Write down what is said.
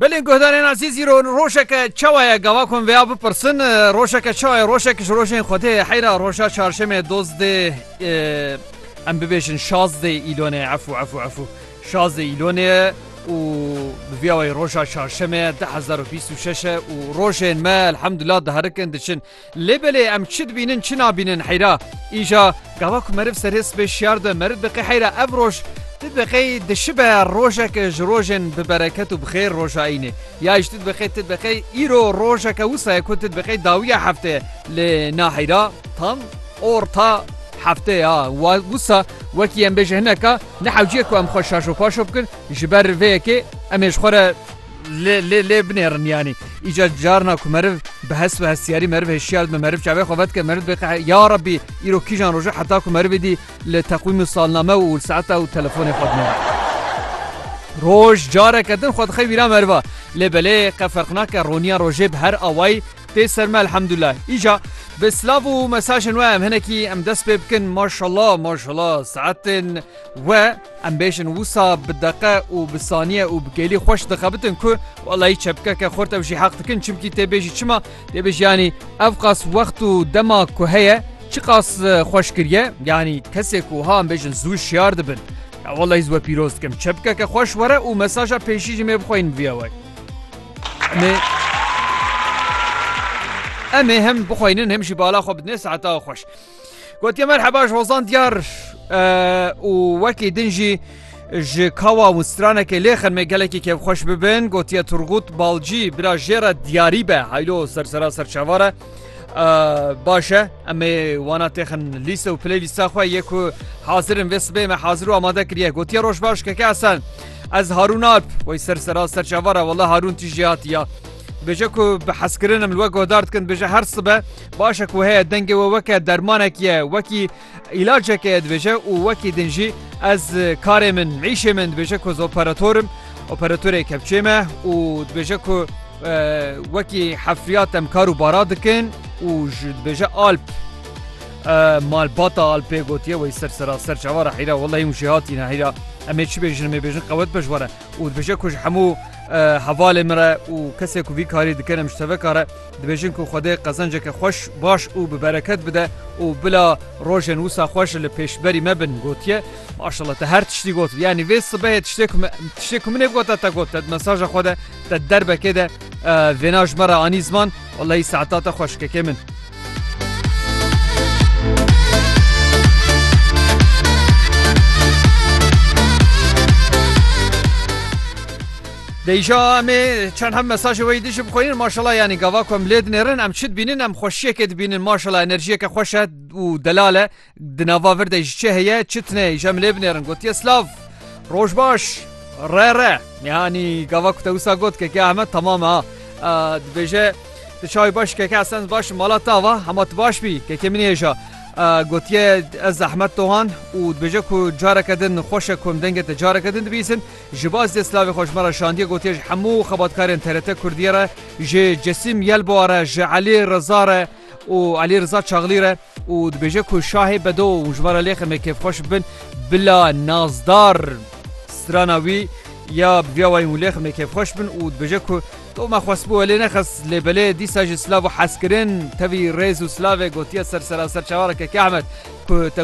Belê guhdarên azîzî ro rojeke çawa ye gava ku em vêya bipirsin rojeke çawa ye rojek ji rojên Xwedê heyra roja çarşemê dozdê em bibêjin şazdê îlonê efû efû efû şazdê îlonê û bi vîya wê roja çarşemê de hezar û bîst û şeş e û rojên me elhemdullah diherikin diçin Lê belê em çi dibînin çi nabînin heyra. Îja gava ku meriv serê sibê şiyar de meriv diqê heyra ev roj tu diqê dişibe rojeke ji rojên bi bereket û bi xêr roja îynê ya îş tu diqê tu diqê îro rojeke wisa ye ku tu diqê dawiya hefteye lê na heyra tam orta heftê ya wa wisa wekî em bêje hineka ne hewcî ye ku em xwe şaşo paşo bikin ji ber vê yekê em ê ji xwe re lê lê lê binêrin yanî îca carna ku meriv bi hes û hestiyarî meriv hêşiyar dibe meriv çavê xwe vedike meriv dibê qe ya rebî îro kîjan roje heta ku merivê dî li teqwîm û salname û li saeta û telefonê xwe dinêre roj careke din xwe dixê vîra meriva lê belê qe ferq nake roniya rojê bi her awayî tê ser me elhemdullah îca bi silav û mesajên we em hinekî em dest pê bikin maşallah maşallah saetên We em bêjin wisa bi deqe û bi saniye û bi gelî xweş dixebitin ku welayî çepkeke xurt ew jî heq dikin çimkî tê bêjî çima tê bêjî yanî ev qas wext û dema ku heye çi qas xweş kiriye yanî kesê ku wiha em bêjin zû şiyar dibin ya welayî we pîroz dikim çepkeke xweş were û mesaja pêşî jî mê bixweyin viya we me Em ê hem bixweynin hem jî bala xwe bidinê saeta xweş. Gotiye merheba ji hozan diyar û wekî din jî ji kawa û stranekê lêxin me gelekî kevxweş bibin gotiye Turgut balcî bila jê re diyarî be heylo sersera serçavare başe em ê wana têxin lîse û pilê lîsa xwe yê ku hazirin vê sibê me hazir û amade kiriye gotiye roj baş keke esen ez harûn alp wey sersera serçavare wala harûn tîjî hatiya bêje ku bi heskirinim li we godar dikin bêje her sibe Baş e ku heye dengê we weke dermanek ye, wekî îlaceke ye dibêje û wekî din jî ez karê min, îşê min dibêje ku ez operator im, operatorê kepçê me û dibêje ku wekî hefriyat em kar û bara dikin û ji dibêje alp malbata alpê gotiye wê ser seraser çawa re heyra wela hêmû jê hatîne heyra em ê çi bêjin em ê bêjin qewet beş were û dibêje ku ji hemû hevalê min re û kesê ku vî karî dikin em ji teveka re Dibêjin ku Xwedê qezenceke xweş, baş û bi bereket bide û bila rojên wisa xweş li pêşberî me bin gotiye, Maşallah te her tiştî got yanî vê sibehê tiştê ku tiştê ku min ê gote te got te di mesaja xwe de te di derbekê de vêna ji me re anî ziman wellahî saeta te xweş kekê min. Deyja me çend hem mesajê weyî dijî bixwînin maşallah yanî gava ku em lê dinêrin em çi dibînin em xweşiyekê dibînin maşallah enerjiyeke xweş e û delal e di nava vir de ji çi heye çi tune îja em lê binêrin gotiye silav roj baş re re yanî gava ku te wisa got keke heme temam ha dibêje di çawi baş keke esen baş mala te ava hema tu baş bî keke min hêja gotiye ez zehmet dohan û dibêje ku careke din xweşe ku em dengê te careke din dibîsin Ji bo ez dê silavê xwe ji me re şandiye gotiye ji hemû xebatkarên TRT Kurdiyê re, ji Cisîm Yelbowa re, ji Elî Riza re û Elî Riza Çaglî re û dibêje ku şahê bedo û hûn ji me re lê xemê kêfxweş bibin bila nazdar strana wî ya bi vî awayî hûn lê xemê kêfxweş bin û dibêje ku to me xwestbû we lê nexist lê belê dîsa jî silav û hezkirin tevî rêz û silavê gotiye ser seraser çawa re Keke Ehmed ku te